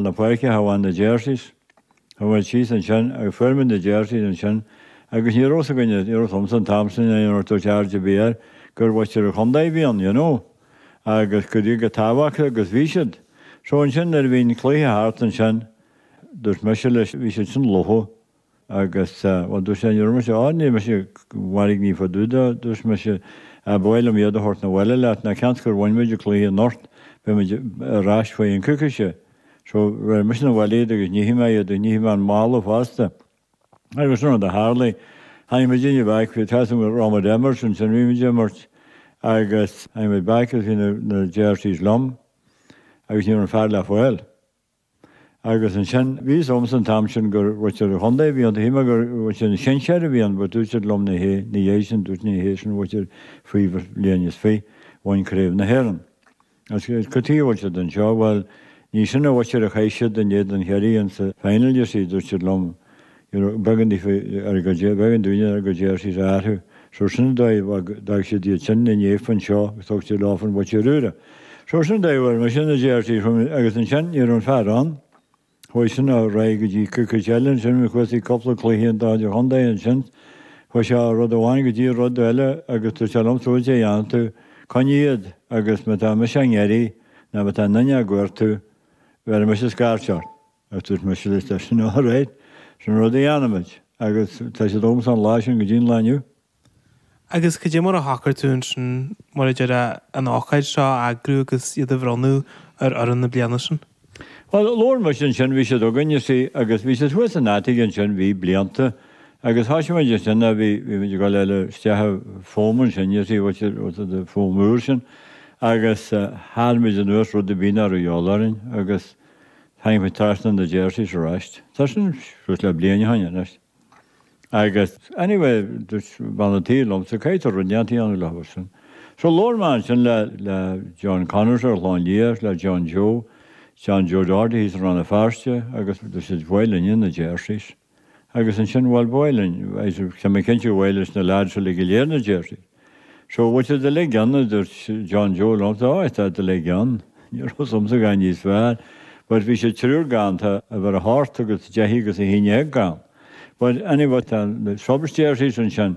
na páirce a thabhairt na jerseys a thabhairt síos ansin agus fuair mé na jerseys ansin agus ní raibh 's againne bhí 's agamsa an t-am sin a dhéanamh dúirt airde bhí air gur mhuintir an chontae a bhí ann you know agus go raibh siad tábhachtach agus bhí siad so ansin nuair a bhí an cluiche thart ansin dúirt mise leis bhí siad sin fliuch Agus, bhuel, dúirt sé, ní raibh mise ann, níl mise, 'mo chónaí i bhfad uait, dúirt mise, b'fhearr liom iad a thabhairt 'na bhaile leat, ná cionn is gur bhain muid an cluiche anocht, beidh muid ar ais faoi cheann coicíse. So, bheir mise 'na bhaile iad agus nífidh mé iad, agus nífidh mé an mála fosta. Agus sin rud a tharlaigh. Tháinig muid aniar back, bhí 's agam go raibh muid a imirt ansin, bhí muid a imirt agus tháinig muid back agus bhí na jerseys liom agus ní raibh an fear le fáil. Agus ansin, bhí 's agamsa an t-am sin gur mhuintir an Chontae a bhí ann, thuig mé gur mhuintir an sinsear a bhí ann, but dúirt siad liom ní hé, ina dhiaidh sin, dúirt ní hé sin an mhuintir faoi bhliain is fiche a bhain Craobh na hÉireann. Agus cad tuige a bhfuil siad anseo? Bhuel, ní sin an mhuintir a chaith siad in éadan Chiarraí in sa final you see, dúirt siad liom, Nuair a b'éigean daofa a gcuid jerseys a athrú, so sin an dóigh bheag d'fhág siad iad sin ina ndiaidh anseo agus thug siad leofa an mhuintir úra. So sin an dóigh a bhfuair muidinne na jerseys sin agus ansin ní raibh an fear ann. Chuaigh sin ar aghaidh go dtí coicís eile ansin agus chuaigh sí cupla cluichí an dá de chontae ansin. Chuaigh sé ó rud amháin go dtí rud eile agus dúirt sé liom caidé a dhéanfas tú, coinnigh iad agus má tá mise á n-iarraidh ná má tá aon duine á gcuartú, bheirfidh mise scairt ort. Ach dúirt mise, tá sin alright, sin an rud a dhéanaimid, agus tá siad agamsa ón lá sin go dtí an lá inniu. Agus cad é mar a shocair tú ansin mar a déarfá an ócáid seo a eagrú agus iad a bhronnadh ar fhoireann na bliana sin? Bhuel, labhair muid ansin, bhí siad againn, you see, agus bhí siad thuas in attic ansin, bhí blianta, agus thoisigh muid ansin a' bhí, bhí muid ag dul a chur isteach an foam ansin, you see, what you, what the foam úr sin, agus tharraing muid anuas rud ar bith nach raibh a dhíobháil orainn, agus. Tháinig mé trasna na jerseys arais. Tá sin suas le bliain ó shoin anois. Agus anyway dúirt bean a' tí liom, so caithfidh tú rud inteacht a dhéanamh leofa sin. So labhair mé ansin le, le John Connors ar an Chlochán Liath, le John Joe, John Joe Doherty thíos i Rann na Feirste agus dúirt siad ba mhaith linne na Jerseys. agus ansin, bhuel, bhuel, an, tá mé cinnte gur mhaith leis na lads uilig go léir na jerseys, so, bhfuil siad uilig ann? a dúirt John Joe liom, so, aye, tá siad uilig ann, ní raibh 's agamsa gan níos fearr, but bhí siad triúr gann, tá uimhir a seacht agus a deich agus a haon déag gann, but anyway, tá, subs jerseys ansin.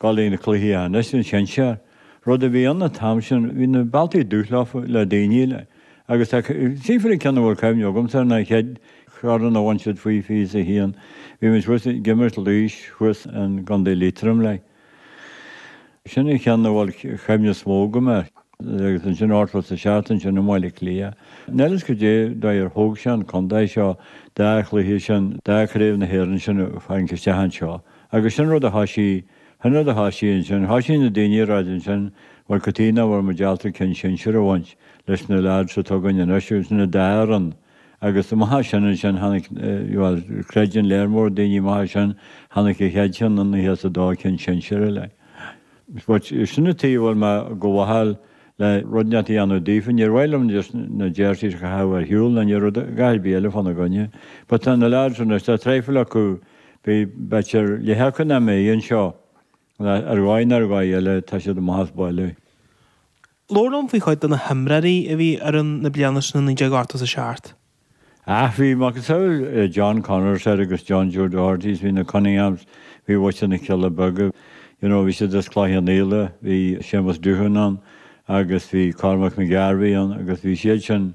Gabháil ag na cluichí anois an sinsear. Rud a bhí ann an t-am sin, bhí na bealtaí dubh shílfeá le daoine le, agus tá, trí fichid ceann a bhfuil cuimhne agamsa air an chéad chraobh a bhain siad faoi fiche is a haon. Bhí muid thuas ag imirt Laois thuas in gContae Liatroim le. Sin an cheann a bhfuil cuimhne is mó agam air. Agus ansin ochtó is a seacht ansin i mBaile Átha Cliath. Níl a fhios goidé an dóigh ar thóg sé an contae seo, an dá chluiche sin, an dá Chraobh na hÉireann sin a tharraingt isteach anseo. Agus sin rud atá sí, sin rud atá sí ansin, tá sí na daoine ag ráit ansin, bhuel cad chuige nach bhfuil muid ábalta ceann sinsir a bhaint leis na leaids atá againn anois agus na d'fhear an, agus má thá sin ansin tháinig, bhuel creideann léar mór daoine má thá sin, tháinig an chéad cheann i nócha is a dó ceann sinsir eile. Aye. But sin na taobh a bhfuil mé go mhaitheail le rud inteacht a dhéanamh daofa, níor mhaith liom just na déirtí a chaitheamh ar shiúl ná níor rud a, a dhath ar bith eile fána gcoinne. But tá na leaids anois, tá traidhfil acu, Beidh b'fhéidir leath acu nach mbeidh anseo, nó ar dhóigh nó ar dhóigh eile tá siad amach as baile. Labhair liom faoi chuid de na himreoirí a bhí ar fhoireann na bliana sin i 1980 is a seacht. Ach bhí macasamhail John Connors air agus John Joe Dohertys, bhí na Cunninghams, bhí White na Cealla Beaga, you know, bhí siad as Cloich Cheann Fhaola, bhí Séamus Doohan ann agus bhí Cormac McGarvey ann agus bhí siad sin,